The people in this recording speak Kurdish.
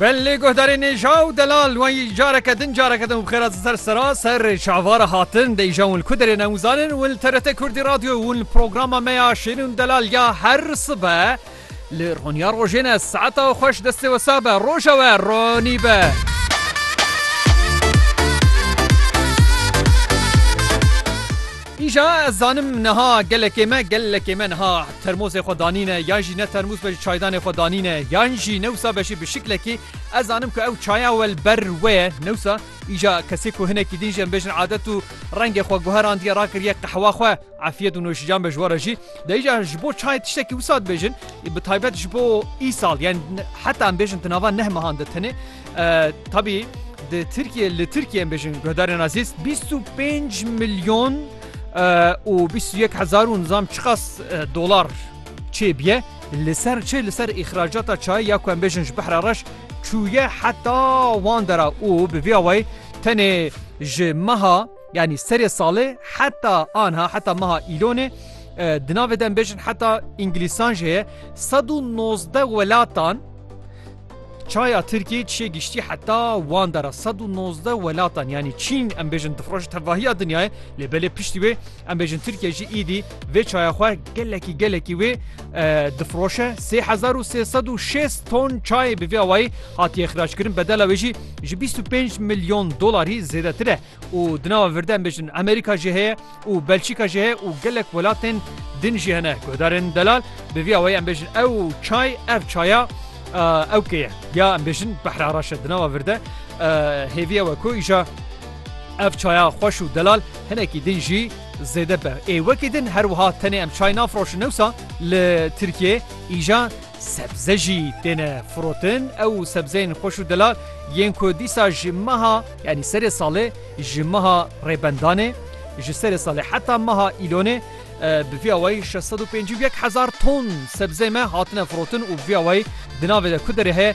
Belê guhdarê nêja û delal wan yî careke din careke din bixêra di ser sera ser çavara hatin de îja wan li ku derê ne û zanin wan li TRT Kurdî Radyo wan li programa me ya Şêrîn û Delal ya her sibe li roniya rojê ne saeta xweş destê wisa be roja we ronî be. Îja ez zanim niha gelekê me gelekê me niha termosê xwe danîne yan jî ne termos be ji çaydanê xwe danîne yan jî newsa be jî bi şiklekî ez zanim ku ew çaya we li ber we ye newsa îja kesê ku hinekî din jî em bêjin adet û rengê xwe guherandiye rakiriye qehwa xwe efiyet û noşîcan be ji we re jî de îja ji bo çayê tiştekî wisa dibêjin bi taybet ji bo îsal yan heta em bêjin di nava neh mehan de tenê Tabî di Tirkiye li Tirkiye em bêjin guhdarên Azîz bîst û pênc milyon û bîst û yek hezar û nizam çiqas dolar çêbiye li ser çê li ser îxracata çayê ya ku em bêjin ji behra reş çûye heta wan dera û bi vê awayê tenê ji meha yanî serê salê heta anha heta meha îlonê di navê de em bêjin heta îngilîsan jê ye sed û nozdeh welatan Çaya Tirkiyê çê giştî heta wan dera sed û nozdeh welatan yanî Çîn em bêjin dixroje tevahiya dinyayê lê belê piştî wê em bêjin Tirkiye jî îdî vê çaya xwe gelekî gelekî wê difroşe sê hezar û sê sed û şêst ton çayê bi vê awayî hatiye xiraçkirin bedela wê jî ji bîst û pênc milyon dolarî zêdetir e. û di nava virde em bêjin Amerîka jî heye û Belçîka jî heye û gelek welatên din jî hene guhdarên delal bi vî awayî em bêjin ew çay ev çaya ew kê ye ya em bêjin behre araş e di nava virde hêvî ew e ku îja ev çaya xweş û delal hinekî din jî zêde be ê wekî din her wiha tenê em çay nafroşin newsa li Tirkiyeyê îja Sebze jî têne firotin, ew sebzeyên xweş û delal yên ku dîsa ji meha yanî serê salê ji meha Rêbendanê ji serê salê heta meha Îlonê bi vî awayî şeş sed û pêncî û yek hezar ton sebzeyê me hatine firotin û bi vî awayî di navê de ku derê heye